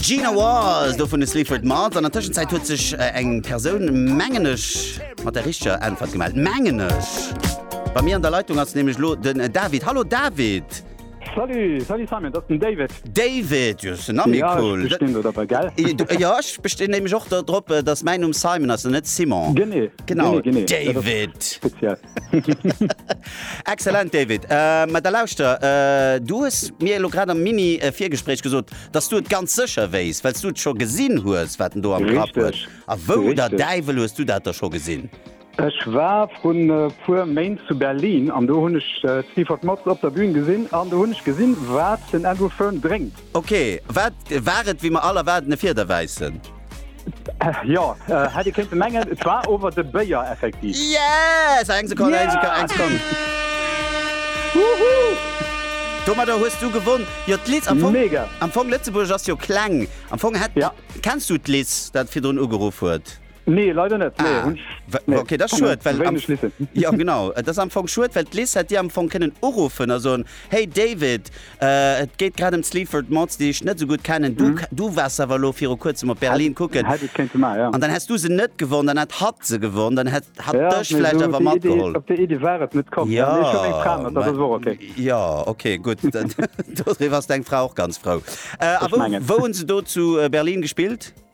Gina Wall do vun de Sleaford Mars an der Tëschenzäit huet sech äh, eng Persoun mengenech mat der richteger Äntwert gemellt. Mengenech. Bei mir an der Leitung ass nämlich lo den äh, David. Hallo David. Salut, salut Simon, das ist den David. David, jo, se Name ja, cool. Ich bin dabei, gell? Äh, du- äh, ja, ich bestehe nämlich auch darauf, dass mein Name Simon ist und nicht Simon. Genau, Genau, genau. David. Speziell. Excellent David, mä da lauschter, du hues mir elo grad am Mini-Virgespréich gesot, datt du et ganz sécher wéisst, well s du et scho gesinn hues, wat en do am Grapp huet. A wou der Däiwel hues du dat da scho gesinn? Ech war vrun e puer Méint zu Berlin an do hunn ech d'Sleaford Mods op der Bühn gesinn an do hunn ech gesinn, wat den Andrew Fearn drénkt. Ok, wat war et wéi mer all erwaarden, e Fiederwäissen? Jo, hätt ee kéinte mengen. Et war ower de Béier effektiv. Yes! Eng Sekonn, eng Sekonn, eng Sekonn. Domadder hues du gewonn. Jo, d'Liz, am Fong, Mega! am Fong Lëtzebuerg ass jo kleng. Am Fong hätt, Ja. kenns du d'Liz, dat virdrun ugeruff huet? Nee, leider net. Nee, ah, nee. Okay, das schuet, well am, ja, genau das am Fong schuet, well Liz hat dir am Fong kennen urufen a son hey David äh, et geht grad um Sleaford Mods, die ich net so gut kennen du, mhm. du warst awer lo fir kurzem op Berlin kucken an ja. dann hast du se net gewonnen, dann hat hat se gewonnen, dann hat hat ja, dech nee, vielleicht awer mat geholt op der Idee war et net kommen ja, ja, mein, okay. ja okay gut was deg Frau auch ganz frau äh, wo, wo se do zu äh, Berlin gespielt?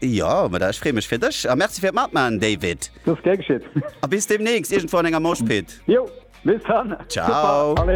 Jo, ma da ech free mech fir dech a Merci fir d'Matmachen, David. Gär geschitt. A bis deemnächst iergendwou an enger Moshpit. Jo, bis dann. Ciao.